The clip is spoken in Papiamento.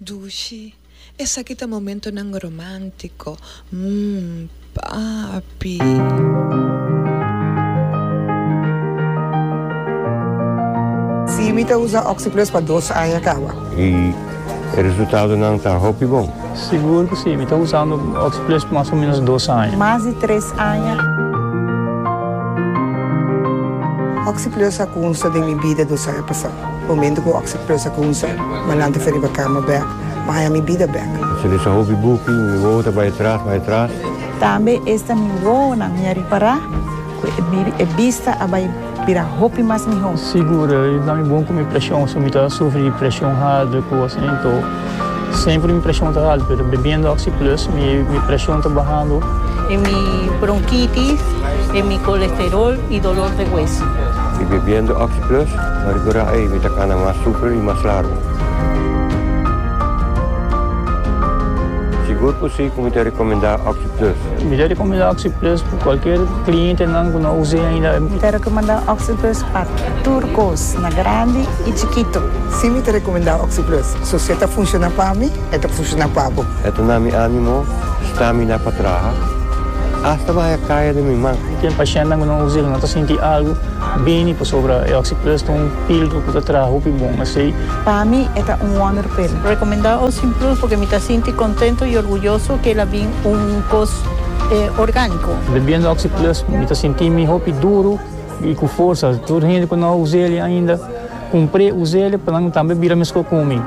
Dushi, Esaki ta momentonan romántico, mm, papi. Sí, mi ta usa Oxyplus pa dos aña caba. Y e resultadonan ta hopi bon. Sigur cu sí, mi ta usando Oxyplus pa mas o menos dos aña. Mas di tres aña. Oxyplus a cunsta den mi bida dos aña pasado. Momento cu oxi plus a cunsa, Malante fue riba cama bek, Maya mi bida bek. Se lesa hopi buki, mi wowo ta bay atras, bay atras. Tambe esta mi wowonan mi a ripara cu e bista a bay bira hopi mas miho. Sigur, i na mi bon cu mi presion, so mi ta sufri di presion harder cu asina, entou. Semper mi presion ta haltu pero bebiendo oxi plus mi mi presion ta bahando. E mi bronkitis, e mi kolesterol i dolor de hueso. Mi bebiendo oxi plus pa rekurá ei mi ta kana mas super i mas largu. Sigur ku si ku mi ta rekomendá oxi plus. Mi ta rekomendá oxi plus pa kualker klientenan ku no us'é ainda. Mi ta rekomendá oxi plus pa tur kos na grandi. I chikito, si mi ta rekomendá Oxyplus, so si e ta funshoná pa mi, e ta funshoná pa bo. E ta na mi ánimo stamina pa traha asta bahaya kaya den mi man. Ken pashentnan ku no usa el no ta sinti algu bini pasobra e Oxyplus ta un píldru ku ta traha hopi bon esei. Pa mi e ta un wonder pil. Rekomendá Oxyplus purke mi ta sinti kontento i orguyoso ku el a bin un kos orgániko. Bebiendo Oxyplus mi ta sinti mi hopi duru. I ku forsa tur hende ku no a usa el ainda, kumpr'é, usa el pa nan tambe bira meskos ku mi.